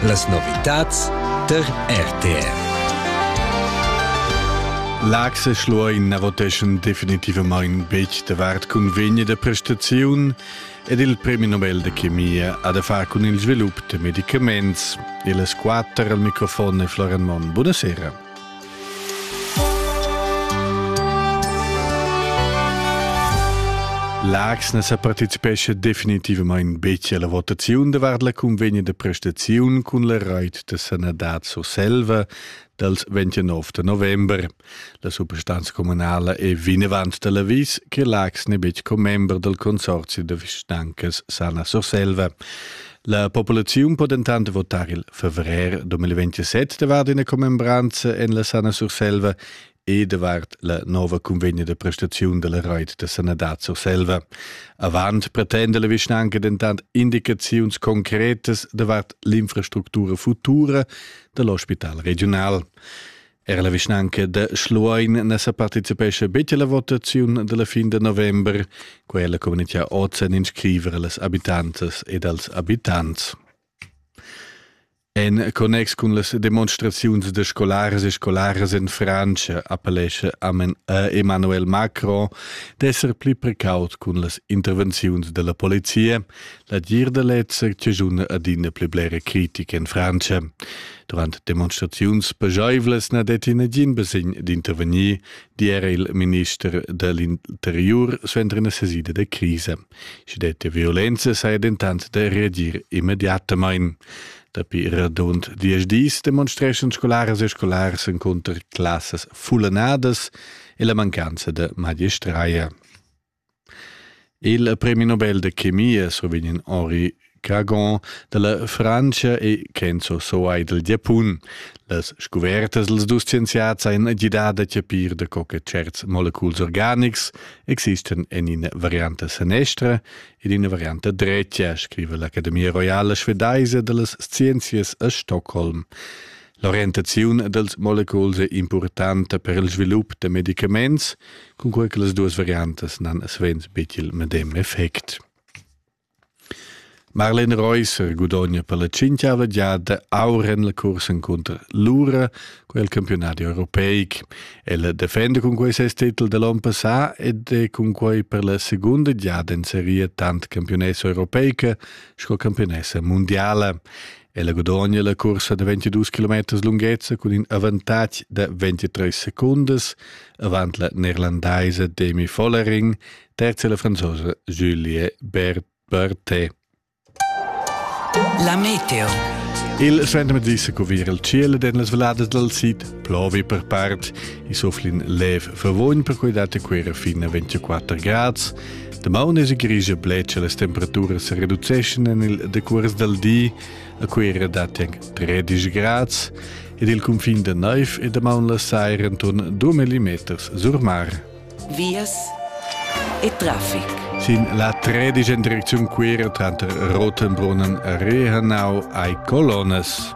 Las novitads tar RTR. L'Axe Schluein voteschan definitivamain betg davart cunvegna da prestaziun ed il premi Nobel de chemia ha da far cun il svilup da medicaments. E las quatter al microfon è Florian Monn. Buonasera. Laax ne sa participescha definitivamain betg alla votaziun davart la cunvegna da prestaziun cun la rait da sanadad Surselva dals 29 da november. La suprastanza communala è vinavant da l'avis che Laax n'è betg commember dal consorzi da vischnancas Sana Surselva. La populaziun po dentant votar il fevrer 2027 davart ina commembranza en la Sana Surselva e davart la nova convegna da prestaziun della Reit da Sanadad Surselva. Avant pretenda la vischnanca dentant indicaziuns concretas davart l'infrastructura futura dell'ospital regional. Er la vischnanca da Schluein na sa participescha betg alla votaziun dalla fin de november, quella communità oz en inscriver las abitantas ed als abitants. En connex cun las demonstraziuns de scolares e scolares en Francia appellesce amen a Emmanuel Macron d'esser pli precaut cun las intervenziuns della polizia, la dir de lezzer tejuna adina pli blere critica en Francia. Durant demonstraziuns pajaivlas na detti nagin basegn d'intervegnir, di era il minister da l'interiur suenter ina sesida da crisa. Sche detti violenza saja dentant da reagir immediatamain. Dapi radund diesch dis demonstreschan scolaras e scolars encunter classas fullanadas e la mancanza da magistraia. Il premi Nobel da chemia survegn Henri Cagon dalla Frantscha e Kenzo Soai dal Giapun. Las scuvertas dals dus scienziats ein gidà da chapir da co che certs moleculs organics existan en ina varianta sanestra ed ina varianta dretga, scriva l'Academia roiala svedaisa dallas scienzias a Stockholm. L'orientaziun dals moleculs è impurtanta per il svilup da medicaments, cunquai che las duas variantas n'han svens betg il medem effect. Marlene Reusser gudogna per la cinquiava giada aur en la cursa cunter l'URA, quel campionati europeic. Ella defenda cun quei ses titel dall'on passà ed è cun quei per la segunda giada in seria tant campionessa europeica sco campionessa mondiala. Ella gudogna la cursa da 22 km lunghezza cun in avantatg da 23 secundas avant la neerlandaisa Demi Vollering, terza la franzosa Julie Berthet. La meteo. Il Svendemet disse cuvir il ciel ed en las valadas dal sid plovi per part. I sofflin lev favogn per cui date quera fin a 24 grads. Damaun es grigia bled che las temperaturas se reduceschan en il decuors dal di, a cui era datien 13 grads, ed il confin da naiv e damaun la saira intorn 2 millimeters sur mar. Vias e traffic. Sin la 13 in direcziun quera tranter Rotenbrunnen e Rehanau hai colonnas.